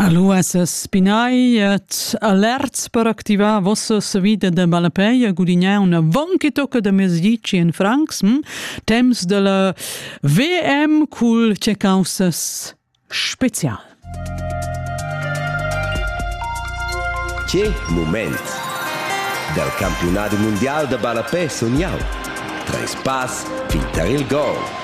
Alura spinai et alerts per activar vossa savida da ballapei e gudignar una vonchitocca da mesdici in francs. Hm? Temps de la VM cul checausas special. Che moment! Dal campionado mondial da ballapei sun jau. Treis pass fin tar il gol.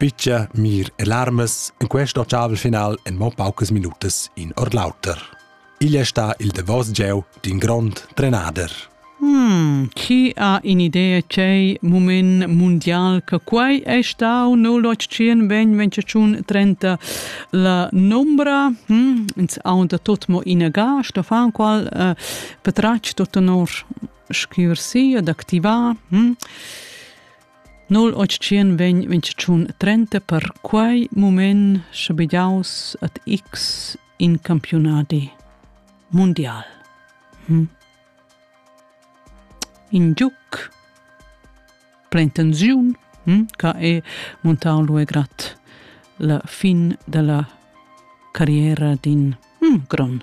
Pitgia, mir e larmas, in questo chaval final en mo paucas minutas in or l'auter. Igl è sta il davos gieu d'in grond trenader. Hmm, chi ha in idea c'è moment mondial che quai è stau 0800 ben 30 la nombra hm, ins ha da tot mo inaga sto fan qual uh, petrach tot onor schiver si ad activar hm? 0800 vegn mintgatschun trenta per quei mument schabegiaus ad X in campiunadi mundial. Hm. In giuc plein tensiun hm, che è montau luegrat la fin della carriera d'in hm, gron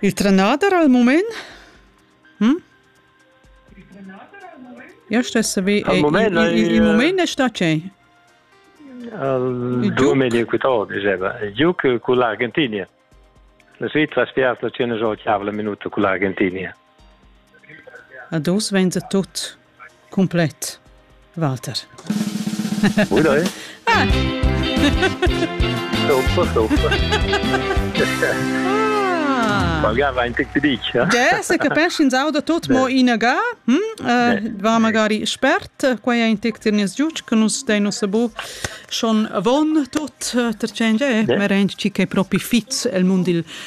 Il trenader al mument? Hm? Io stess vi. Al mument il mument è sta che? Al 2008 diceva, io con l'Argentina. La Svizzera ha spiato la 100 minuta con l'Argentina. Ad oz vainsa tut cumplet, Walter. Buona è? Ah! Sofa, sofa. Ah. Magari va in tic dic. Ja, se capeschins auda tot mo inaga, hm? uh, va magari spert, quai è in tic tir nies giuc, che nus dei nos bu schon von tot, eh, tercen ge, merenc ci che propi fits el mund il